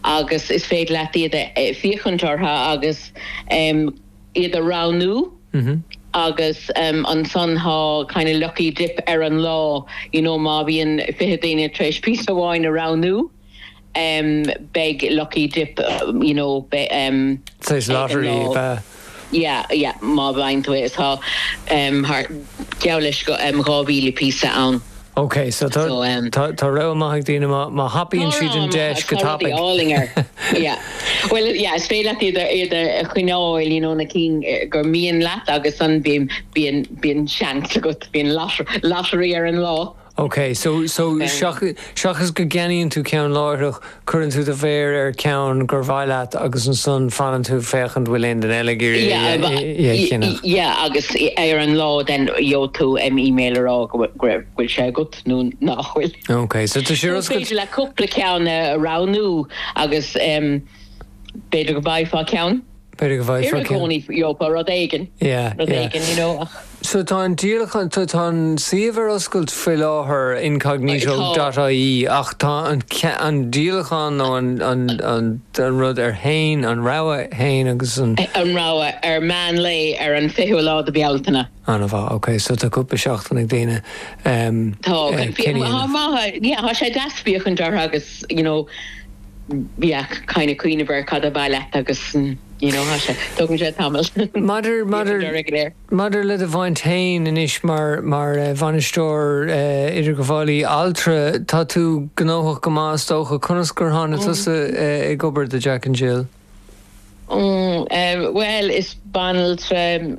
agus is féidir leat iad a féachaint orthu agus iad a roghnú agus ansan tá kind of lucky dip ar an lá you know má bhíonn fiche daoine tar éis píosa amháin a roghnú beidh lucky dip you know beidh. Tar éis lottery beidh. yeah yeah má bhfaigheann tú é is tá em har geall leis go em dhá mhíle píosa ann Ok, so tá so em tá tá rogha mhaith ag daoine má má thapaíonn siad an deis Tá rogha mhaith agus go tapaidh. Tá rudaí álainn ann yeah bhuel yeah is féidir leat iad a iad a choinneáil you know na cinn gur mian leat agus ansan bíonn bíonn bíonn seans agat bíonn lot lottery ar an lá. Ok, so, so, seachas go gceannaíonn tú ceann láithreach, cuireann tú do mhéar ar cheann gur mhaith leat agus ansan fanann tú ag féachaint an bhfuil aon duine eile ag iarraidh é a cheannach. Yeah, agus ar an lá then gheobhaidh tú an email a rá go bhfuil sé agat nó nach bhfuil. Ok, so tá sé rud. Is féidir leat cúpla ceann a roghnú agus b'fhéidir go bhfaighfeá ceann. B'fhéidir go bhfaighfeá ceann. Gheobhair i gcónaí you know, rud éigin, rud éigin, you know, ach. So tá an díolachán, tá an suíomh ar oscailt faoi láthair, incognito dot ie, ach tá an an díolachán nó an an an an rud ann fhéin, an rogha fhéin agus an. An rogha ar meán lae ar an 20ú lá de Bhealtaine. Ana-mhaith. Ok, so tá cúpla seachtain ag daoine, Tá, ok. Fíor, cinneadh a. maith, yeah, tá sé deas féachaint orthu agus, you know, yeah, kind of cuimhneamh ar cad ba mhaith leat agus, you know, tá sé, tógann sé tamall. Maidir, maidir, maidir le do bhaint féin anois mar, mar Bhainisteoir Idirghabhálaí Altra, tá tú gnóthach go maith is dócha. Conas gur tháinig tusa ag obair do Jack and Jill? Bhuel, is banaltra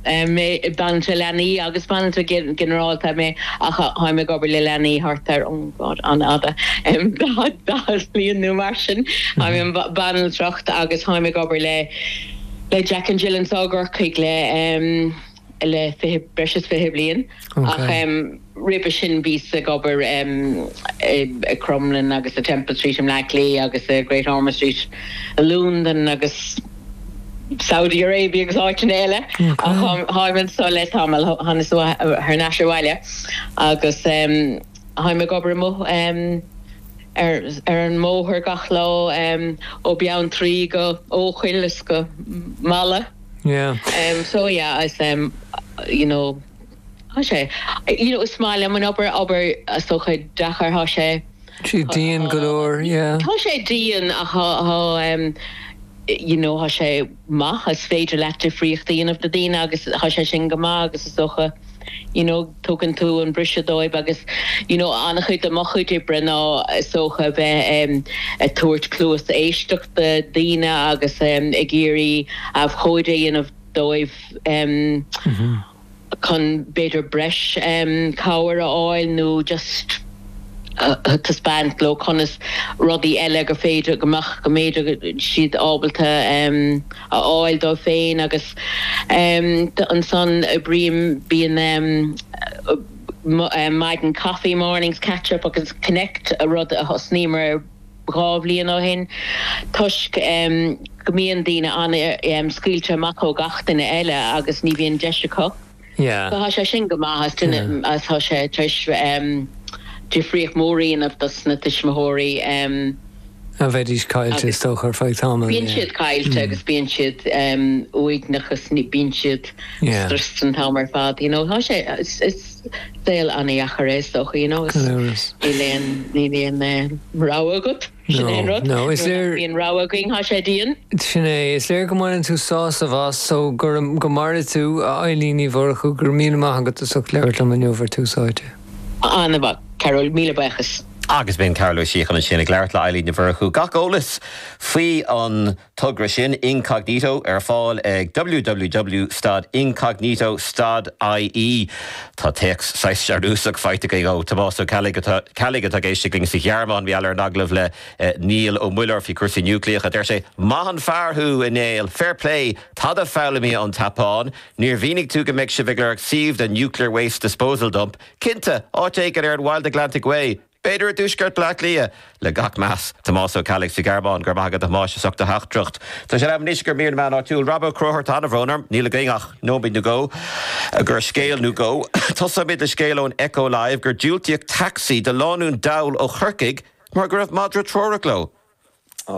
mé, banaltra leanaí agus banaltra ginearálta mé ach táim ag obair le leanaí thart ar, oh God, ana-fhada, daichead bliain nó mar sin. Táim i mbanaltracht agus táim ag obair le Jack and Jill anseo i gCorcaigh le, le breis is fiche bliain ach roimhe sin bhíos ag obair i Crumlin agus i Temple Street i mBleá Cliath agus i Great Ormond Street i Lúndain agus Saudi Arabia agus áiteanna eile ach tháim anso le tamall, thánag thar n-ais abhaile agus tháim ag obair amuigh ar an mbóthar gach lá ó Bheanntraí go hEochaill is go Mala. Yeah. So yeah, is um you know tá sé you know is maith liom an obair, obair is dócha deacair, tá sé. Tá sé dian go leor, yeah. Tá sé dian ach tá tá um you know tá sé maith, is féidir leat difríocht a dhéanamh do dhaoine agus tá sé sin go maith agus is dócha. you know tugann tú an briseadh dóibh agus you know an-chuid de mo chuid oibre ná is dócha a bheith ag tabhairt cluas éisteachta do dhaoine agus em ag iarraidh abhcóide a dhéanamh dóibh em chun b'fhéidir breis em cabhair a fháil nó just a thaispeáint leo conas rudaí eile gur féidir go mbeadh go mbeidís siad ábalta em a fháil dóibh féin agus em ansan oibrím, bíonn em maidin coffee mornings, catch up agus connect, rud a thosnaíomar dhá bhliain ó shin toisc em go mbíonn daoine an-scaoilte amach ó gach duine eile agus ní bhíonn deis acu. Tá sé sin go maith agus tá sé tar éis difríocht mhór a dhéanamh dos na tuismitheoirí. Mar bheidís caillte is dócha ar feadh tamaill? Bíonn siad caillte agus bíonn siad uaigneach is bíonn siad stressed an t-am ar fad you know. Tá sé, is saol an-dheacair é is dócha you know. Gan amhras. Níl aon rogha agat. Sin é an rud. Nuair nach mbíonn rogha againn, tá sé dian. Sin é. Is léir go mbaineann tú sásamh as so go maire tú, a Elaine Ní Mhurchú. Go raibh míle maith agat as ucht labhairt liom inniu ar Tús Áite. An-mhaith, a Chathail. Míle buíochas. Agus b'in Cathal Ó Síocháin ansin ag labhairt le hElaine Ní Mhurchú. Gach eolas faoi an. togra sin Incognito ar fáil ag www stad Incognito stad IE Tá téacs saghas searúsach faighte againn ó Thomás Ó Ceallaigh atá ag éisteacht linn sa Ghearmáin mar gheall ar an agallamh le Niall Ó Muilleoir faoi chúrsaí núicléacha. Deir sé, Maith an fear thú, a Néill! Fair play! Tada foghlamtha ón tSeapáin! Níor mhínigh tú go mbeidh sibh ag lorg suímh don Nuclear Waste Disposal Dump? Cinnte! Áit éigin ar an Wild Atlantic Way! B'fhéidir i dtuaisceart Bhleá Cliath. Le gach meas, Tomás Ó Ceallaigh sa Ghearmáin, go raibh maith agat a Thomáis as ucht do theachtaireacht. Tá sé in am anois do mhír na meán áitiúil Rob Ó Cródhairt an-bhrón orm níl againn ach nóiméad nó dhó do scéal nó dhó. Tosnóimid le scéal ón Echo Live gur diúltaíodh taxi do lánúin dall ó Chorcaigh mar go raibh madra treorach leo.